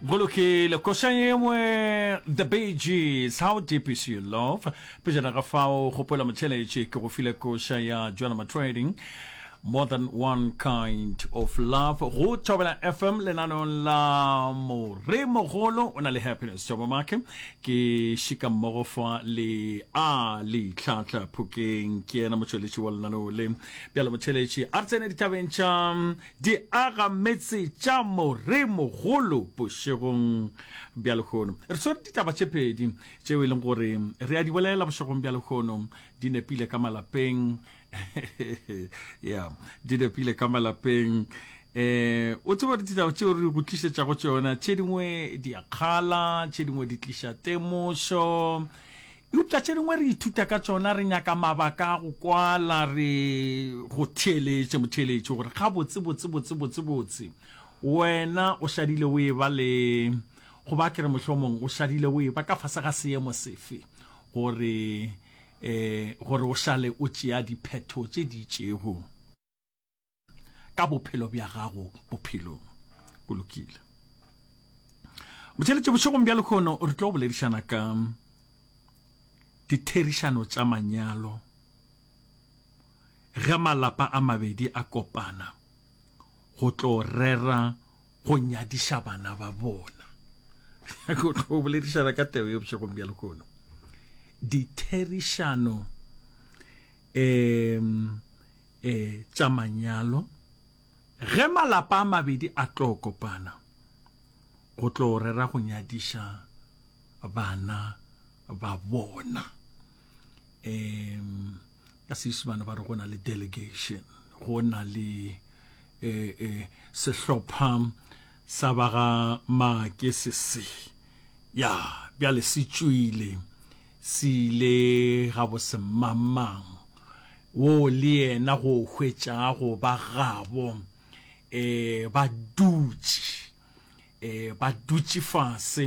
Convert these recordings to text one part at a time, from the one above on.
go lokile košang engwe the beges how deep is your love pejana ga fao kgopela motheletše ke go file koša ya joanama trading more than one kind of love go thobela fm lenanong la moremogolo o na le happiness jobo make ke šika mmogo fa le a letlhatla phokeng ke yena motšweletši wa lenaneo le bjalo motheletši a re tsene ditabeng tša Di aga metse tša Moremogolo bošegong bja lehono. Re swere ditaba tše pedi tšeo e leng gore re a di bolela bošegong bja lehono. Di nepile ka malapeng. Yeah, di nepile ka malapeng. Eh, o tseba gore ditaba tšeo re go tlišetšago tšona tše dingwe di a kgala, tše dingwe di tliša temošo. Eupša tše dingwe re ithuta ka tšona, re nyaka mabaka a go kwala, re. Go theeletše, motheeletši, gore gabotse, botse, botse, botse, botse, wena o šadile o e-ba le, goba a ke re mohlomong o šadile o e-ba ka fase ga seemo sefe, gore, eh, gore o šale o tšea diphetho tše di itšego. ka bophelo bja gago bophelong go lokile motšheletše bošegong bja lekgono re tlo boledišana ka ditherišano tša manyalo ge malapa a mabedi a kopana go tlo rera go nyadiša bana ba bona go tlo boledišana ka teo ye bošegong bja lekgono ditherišano um e tša manyalo, ge malapa a mabedi a tlo kopana go tlo rera go nyadiša bana ba bona. E ka Seišimane ba re go na le delegation, go na le e, e, sehlopha sa ba ga Maake se se ya bjale se tšwile Se ile gabose mmangmang woo le yena go hwetša go ba gabo e ba dutše e ba dutše fase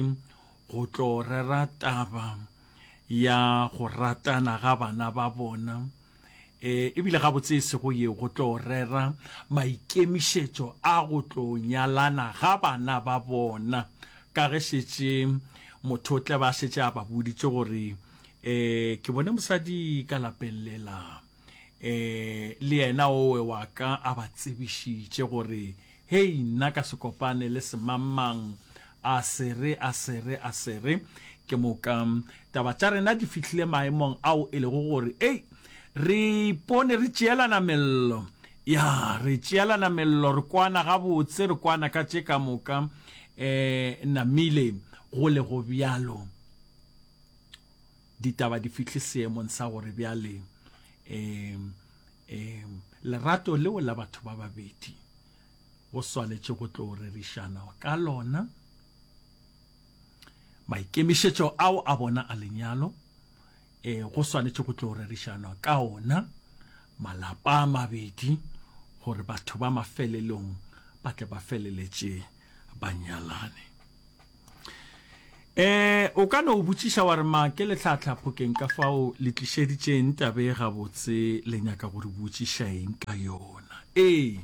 go tlo rera taba ya go ratana ga bana ba bona. e ebile gabotse e sego yeo go tlo rera maikemišetšo a go tlo nyalana ga bana ba bona ka ge šetše motho o tle ba šetše a ba boditše gore um ke bone mosadi ka lapellela um le yena owe wa ka a ba tsebišitše gore Hei, nna ka se kopane le semangmang, a se re, a se re, a se re. Ke moka taba tša rena di fihlile maemong ao e lego gore, hei, re ipone re tšeelana mello. Ya, re tšeelana mello, re kwana gabotse, re kwana ka tše ka moka. E namile, go le go bjalo. Ditaba di fihle seemong sa gore bjale e Ee, lerato leo la batho ba babedi go swanetše go tlo rerišana ka lona. Maikemišetšo ao a bona a lenyalo e go swanetše go tlo rerišanwa ka ona malapa a mabedi gore batho ba mafelelong ba tle ba feleletše ba nyalane. Eh, o ka no botšiša wa re ma ke letlhahla phokeng ka fao le tlišeditšeng tabe gabotse le nyaka gore botšiša eng ka yona. Ee,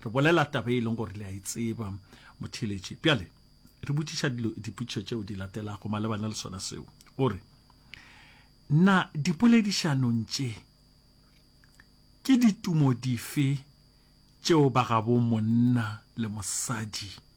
re bolela tabe e leng gore le a e tseba motheletši. Bjale re botšiša dilo dipotšišo tšeo di latelago malebana le sona seo. Gore na dipoledišanong tše ke ditumo dife tšeo ba gabo monna le mosadi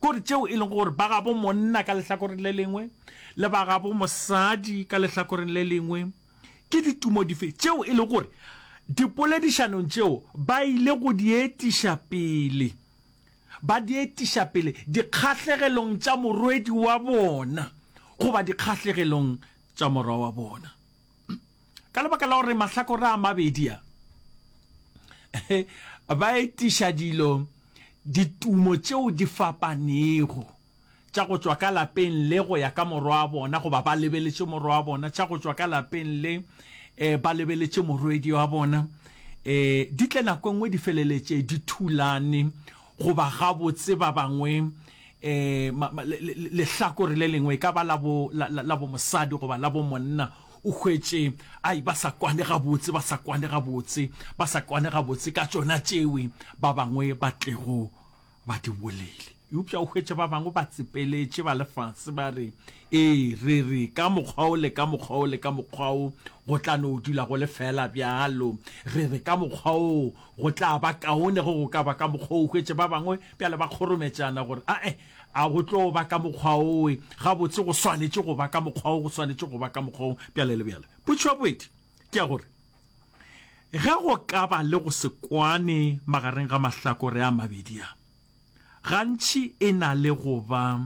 Kore tšeo e lego gore ba gabo monna ka lehlakoreng le lengwe le ba gabo mosadi ka lehlakoreng le lengwe ke ditumo dife tšeo e lego gore dipoledišanong tšeo ba ile go di etiša pele, ba di etiša pele dikgahlegelong tša morwedi wa bona goba dikgahlegelong tša morwa wa bona? ka lebaka la gore mahlakore a mabedi a ba etiša dilo ditumo tšeo di fapanego tša go tšwa ka lapeng le go ya ka morwa wa bona goba ba lebeletše morwa wa bona tša go tšwa ka lapeng le eh, ba lebeletše morwedi wa bona eh, di tle nako e nngwe di feleletše di thulane Goba gabotse ba bangwe, um, le, le, le, lehlakore le lengwe, e ka ba la bo, la, la, la bomosadi goba la bomonna, o hwetše, ai, ba sa kwane gabotse, ba sa kwane gabotse, ba sa kwane gabotse ka tšona tšewe ba bangwe ba tlego ba di bolele. Eupša o hwetše ba bangwe ba tsepeletše, ba le fase, ba re, Ee, re, re, ka mokgwa o le ka mokgwa o le ka mokgwa o, go tla no dula go le feela bjalo. Re, re, ka mokgwa o, Go tla ba kaone ge go ka ba ka mokgwa o hwetše ba bangwe bjale ba kgorometšana gore, A-e, a go tlo ba ka mokgwa owe, gabotse go swanetše go ba ka mokgwa wo, go swanetše go ba ka mokgwa wo, bjale le bjale. Potšo ya bobedi ke ya gore, Ge go ka ba le go se kwane magareng ga mahlakore a mabedi a, gantši e na le go ba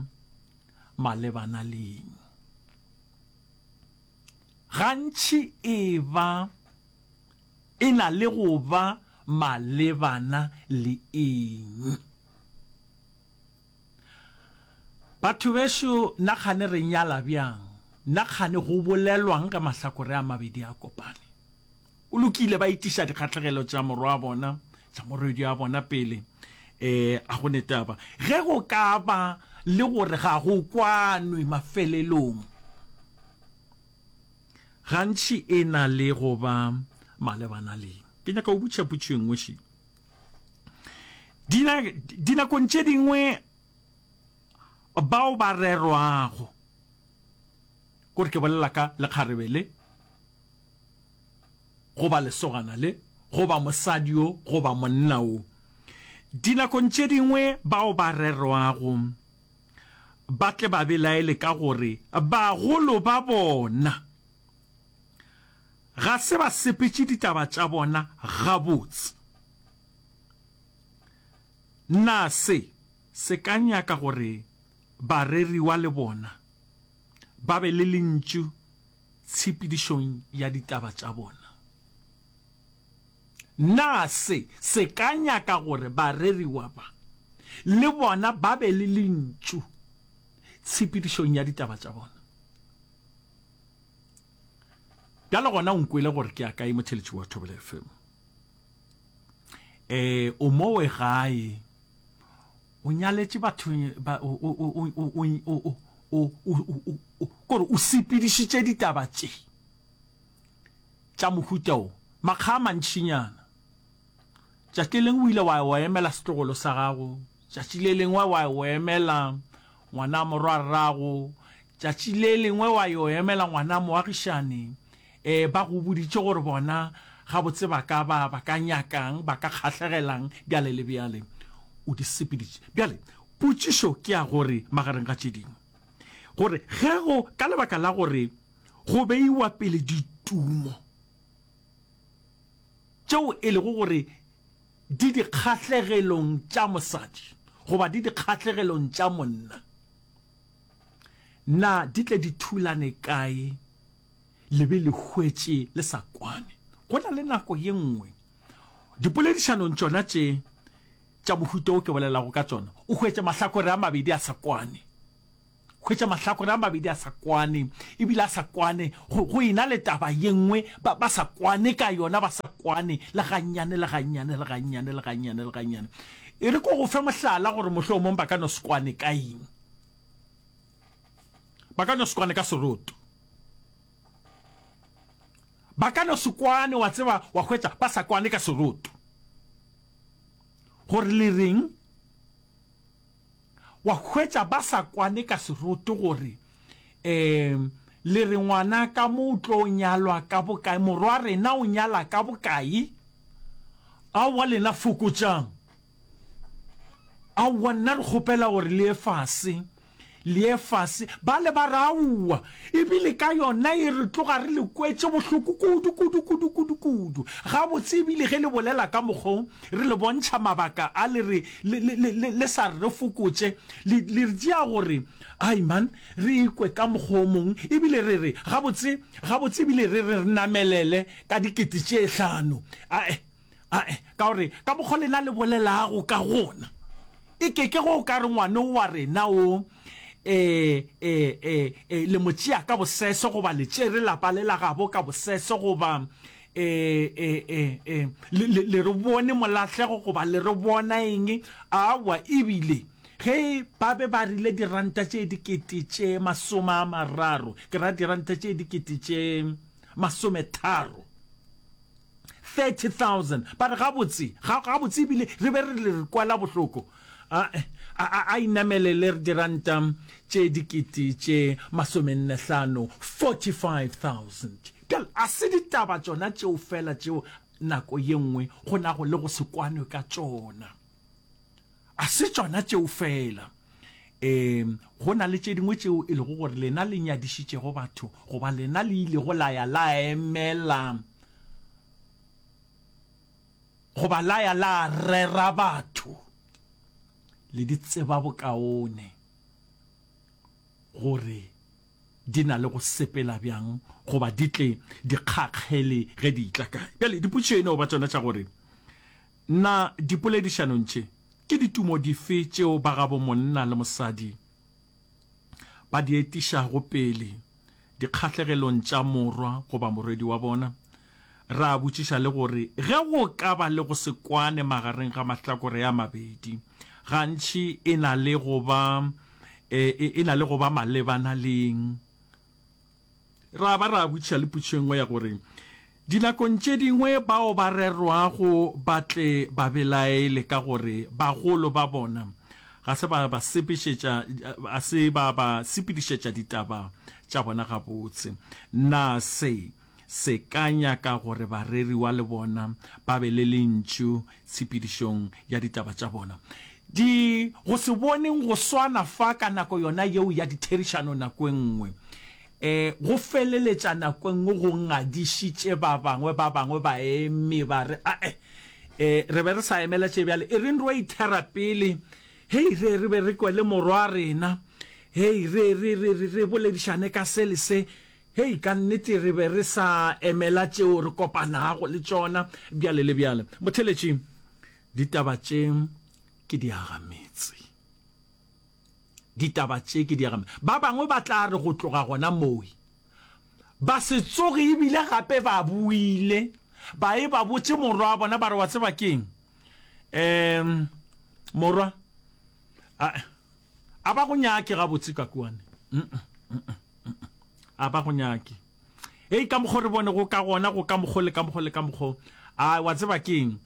malebana le eng? Gantši e ba. E na le go ba malebana le eng? Batho bešo, na kgane re nyala bjang? Na kgane go bolelwang ka mahlakore a mabedi a kopane? Go lokile, ba itiša dikgahlegelo tša morwa wa bona, tša morwedi wa bona pele. Ee, a go ne taba. Ge go ka ba le gore ga go kwanwe mafelelong, Gantši e na le go ba malebana le. Ke nyaka go botša potšo e nngwe še. Dina, dinakong tše dingwe bao ba rerwago gore ke bolela ka lekgarebe le goba lesogana le goba mosadi yo goba monna o dinakong tše dingwe bao ba rerwago ba tle ba belaele ka gore bagolo ba bona ga se ba sepetše ditaba tša bona gabotse. Na se se ka nyaka gore bareriwa le bona ba be le lentšu tshepedišong ya ditaba tša bona? Na se se ka nyaka gore bareriwa ba le bona ba be le lentšu tshepedišong ya ditaba tša bona? Bjale gona o nkwele gore ke ya kae, motheletši wa Thobela FM. E, o mo we gae, o nyaletše batho, kore o sepedišitše ditaba tše. tša mohuta wo, makga a mantšinyana. Tšatši le lengwe o ile wa wa emela setlogolo sa gago, tšatši le lengwe wa wa emela ngwana morwa rrago, tšatši le lengwe wa yo emela ngwana moagišane. E, ba go boditše gore bona gabotse ba ka ba ba ka nyakang, ba ka kgahlegelang, bjale le bjale. O di sepeditše. Bjale potšišo ke ya gore, magareng ga tše dingwe, gore ge go ka lebaka la gore Go beiwa pele ditumo tšeo e lego gore di dikgahlegelong tša mosadi goba di dikgahlegelong tša monna, na di tle di thulane kae le be le hwetše le sa kwane? Go na le nako ye nngwe dipoledišanong tšona tše tša mohuta o ke bolelago ka tšona o hwetše mahlakore a mabedi a sa kwane. Hwetša mahlakore a mabedi a sa kwane, e bile a sa kwane go, go ena le taba ye nngwe, ba, ba sa kwane ka yona, ba sa kwane le gannyane, le gannyane, le gannyane, le gannyane, le gannyane. E re ko go fe mohlala gore mohlomong ba ka no se kwane ka eng. Ba ka no se kwane ka seroto. Ba ka no se kwane, wa tseba, wa hwetša, ba sa kwane ka seroto. Gore le reng? Wa hwetša ba sa kwane ka seroto gore, Ee, le re ngwana ka mo o tlo nyalwa ka bokae, morwa rena o nyala ka bokae? Aowa lena fokotšang. Aowa nna re kgopela gore le ye fase, le ye fase. Bale ba re, Aowa, E bile ka yona e re tloga re le kwetše bohloko kudu, kudu, kudu, kudu, kudu. Gabotse e bile ge le bolela ka mokgo re le bontšha mabaka a le re, le, le, le, le, le sa re re fokotše, le, le re tšea gore, Ai, man, re ikwe ka mokgwa o mong. E bile re re, Gabotse, gabotse e bile re re re namelele ka dikete tše hlano. A, eh, Ae, ka gore ka mokgwa lena le bolelago ka gona, e ke ke go o ka re ngwane wa rena o e, e, e, e, le mo tšea ka bosese goba le tšere lapa le la gabo ka bosese goba e, e, e, e, le, le, le re bone molahlego goba le re bona eng. Awa, ebile ge ba be ba rile diranta tše dikete tše masome a mararo, ke ra diranta tše dikete tše masometharo. 30,000 but gabotse ga gabotse ebile re be re le re kwala bohloko a a a inamele le diranta tše dikete tše masomenne hlano 45,000 gal a se ditaba tšona tšeo fela tšeo nako ye nngwe go nago le go se kwanwe ka tšona A se tšona tšeo feela. Ee, go na le tše dingwe tšeo e lego gore lena le nyadišitšego batho, goba lena le ilego la ya la emela goba la ya la rera batho. Le di tseba bokaone gore di na le go sepela bjang goba di tle di kgakgele ge di itla kae. Bjale dipotšišo e no ba tšona tša gore Na dipoledišanong tše ke ditumo dife tšeo ba gabo monna le mosadi ba di etišago pele dikgahlegelong tša morwa goba morwedi wa bona? Ra botšiša le gore ge go ka ba le go se kwane magareng ga mahlakore a mabedi, gantši e na le go ba, e, e na le go ba malebana le eng? Ra ba ra botšiša le potšo e nngwe ya gore, Dinakong tše dingwe bao ba rerwago ba tle ba belaele ka gore bagolo ba bona ga se ba ba sepešetša, ga se ba ba sepedišetša ditaba tša bona gabotse. Na se se ka nyaka gore bareriwa le bona ba be le lentšu tshepedišong ya ditaba tša bona. Di go se boneng go swana fa ka nako yona yeo ya ditherišano nako e nngwe e go feleletša nako e nngwe go ngadišitše ba bangwe. Ba bangwe ba eme ba re, A-e, e, re be re sa emela tše bjale. E reng re yo ithera pele. Hei, re, re be re kwele morwa rena. Hei, re, re, re, re, re boledišane ka se le se. Hei, ka nnete re be re sa emela tšeo re kopanago le tšona bjale le bjale. Motheletši, ditaba tše ke diagametse. Ditaba tše ke diagametse. Ba bangwe ba tla re go tloga gona mowe ba se tsoge ebile gape ba buile ba e ba botše morwa wa bona ba re wa tseba keng um morwa A ba go nyake gabotse ka kua ne? A ba go nyake? Hei, ka mokgwa o re bonego ka gona, go ka mokgwa le ka mokgwa le ka mokgwa. A wa tseba ke eng?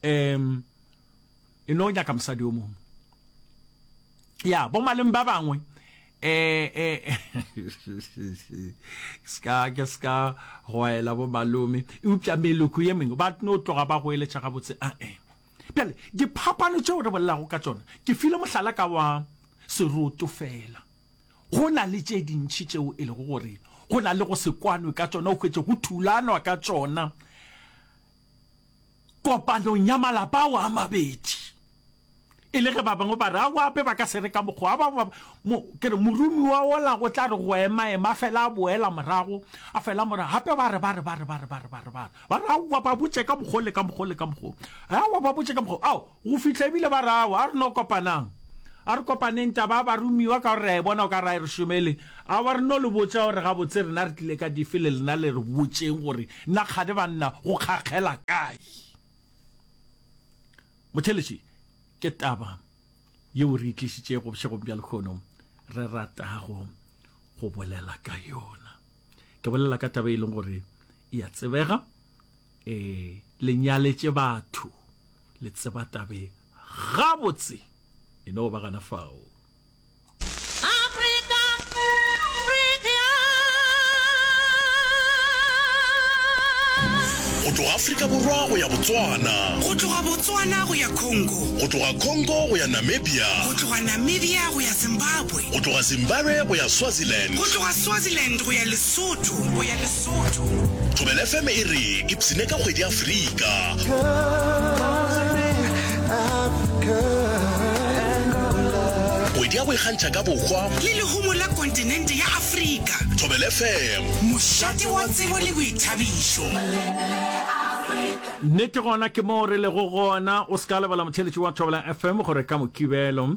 Um, e no nyaka mosadi o mongwe. Ya, bo maleng ba bangwe, eh, eh, ska, ke ska goela bo malome, eupša meloko ye mengwe, ba no tloga ba goeletša gabotse, a, eh. Bjale, diphapano tšeo re bolelago ka tšona, ke file mohlala ka wa seroto feela. Go na le tše dintši tšeo e lego gore go na le go se kwanwe ka tšona, o hwetše go thulanwa ka tšona kopanong ya malapa ao a mabedi. E le ge ba bangwe ba re ao ape ba ka se re ka mokgwa ba ba mo ke re morumi wa ola go tla re go ema ema fela a boela morago a fela morago gape ba re ba re ba re ba re ba re ba re ba re Ba re, Aowa, ba botše ka mokgwa o le ka mokgwa o le ka mokgwa o. Aowa, ba botše ka mokgwa o. Ao, go fihla e bile ba re, Aowa, a re no kopanang. A re kopaneng taba ya baromiwa ka gore re a e bona o ka re a e re šomele. Aowa, re no le botša gore gabotse rena re tlile ka dife le lena le re botšeng gore na kgane banna go kgakgela kae. Motheeletši, ke taba yeo re e tlišitšego bošegong bja lehono, re ratago go bolela ka yona. ke bolela ka taba e leng gore e ya tsebega e le nyaletše batho le tseba tabe gabotse e no ba gana fao go tloga afrika borwa go ya botswana go tloga botswana go ya congo go tloga congo go ya namibia go tloga namibia go ya zimbabwe Go tloga Zimbabwe go ya Swaziland. Go tloga Swaziland go ya Lesotho, go ya Lesotho. Thobela FM e re ipsine ka kgwedi Afrika. Kgwedi ya go ikgantšha ka bohwa. Le lehumo la kontinente ya Afrika. Thobela FM. Mošate wa tsebo le boithabišo. Nnete gona ke moo re lego gona. O se ka lebala motheeletši wa Thobela FM gore ka Mokibelo.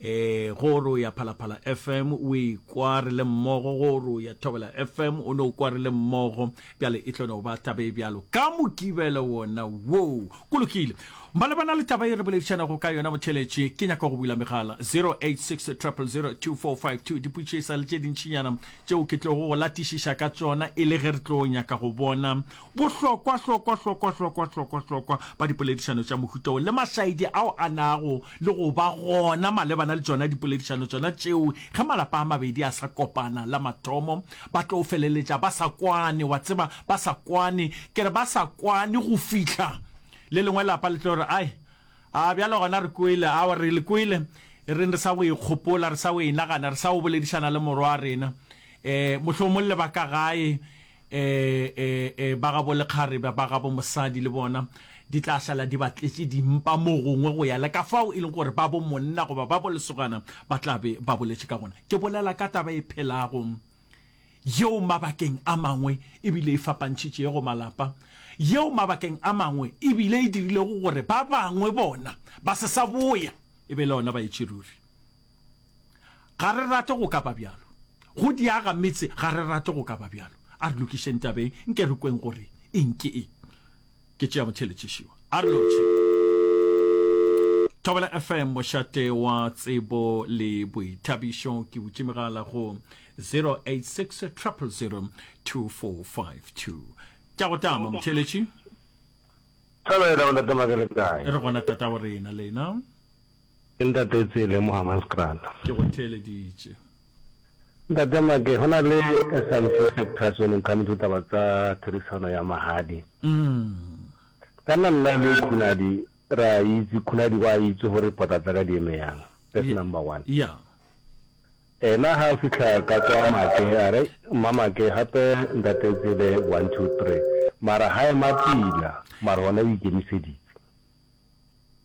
E, go re o ya Phalaphala FM, o ikwa re le mmogo, go re o ya Thobela FM, o no kwa re le mmogo, bjale e tlo no ba taba e bjalo ka Mokibelo wona woo. Go lokile. Malebana le taba e re boledišanago ka yona, motheletši, ke nyaka go bula megala, 0860002452, dipotšiša le tše dintšinyana tšeo ke tlogo go latišiša ka tšona e le ge re tlo nyaka go bona Bohlokwa, hlokwa, hlokwa, hlokwa, hlokwa, hlokwa ba dipoledišano tša mohuta wo le mašaedi ao a nago le go ba gona malebana le tšona dipoledišano tšona tšeo, ge malapa a mabedi a sa kopana la mathomo, ba tlo feleletša ba sa kwane, wa tseba, ba sa kwane. Ke re ba sa kwane go fihla le lengwe lapa le tlo re, Ai, a bjale gona re kwele, aowa, re le kwele, e reng re sa go e kgopola, re sa go e nagana, re sa go boledišana le morwa wa rena, um mohlomong le ba ka gae, e, e, e, ba gabo lekgarebe ba gabo mosadi le bona di tla šala di batletše dimpa mo gongwe go ya le ka fao e leng gore ba bo monna goba ba bo lesogana ba tla be ba boletše ka gona ke bolela ka taba e phelago yeo mabakeng a mangwe ebile e fapantšhitše go malapa yeo mabakeng a mangwe ebile e dirilego gore ba bangwe bona ba se sa boya e be le ona ba etše ruri Ga re rate go ka ba bjalo. Go diaga metse ga re rate go ka ba bjalo. A re lokišeng taba e, nke re kweng gore eng ke eng. Ke tšea motheletši šiwa. A re lotšhe. Thobela FM mošate wa tsebo le boithabišo ke utše megala go 086 000 2452. Tša go tama motheletši. Thobela o ntate Makelekae. Re gona tata wa rena lena. Ke Ntate Tsele mo Hammanskraal. Ke go theeleditše. Ntate Make, go na le Scientific Press o neng ka motho taba tsa therisano ya magadi. Ka nna nna le Khunadi ra itse, Khunadi wa itse gore pota tsaka di eme yang. That's number one. Yeah. Ena ha a fitlha ka kwa Make a re, Mma Make, gape Ntate Tsele one, two, three. Mara ha ema pila, mara ona o ikemiseditse.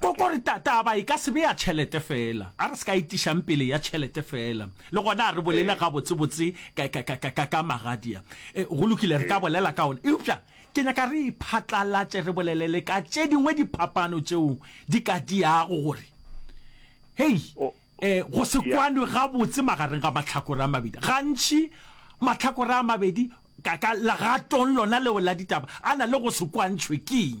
Kokore ta, taba e ka se be ya tšhelete feela. A re se ka etišang pele ya tšhelete feela. Le gona a re bolele gabotsebotse ka, ka, ka, ka, ka, ka Magadia. E, go lokile, re ka bolela ka ona. Eupša ke nyaka re e phatlalatše, re bolele le ka tše dingwe diphapano tšeo di ka diago gore, hei, Oh, e, go se ya. kwanwe gabotse magareng ga mahlakore a mabedi. Gantši mahlakore a mabedi, ka, ka legatong lona leo la ditaba, a na le go se kwantšhwe. Ke'ng?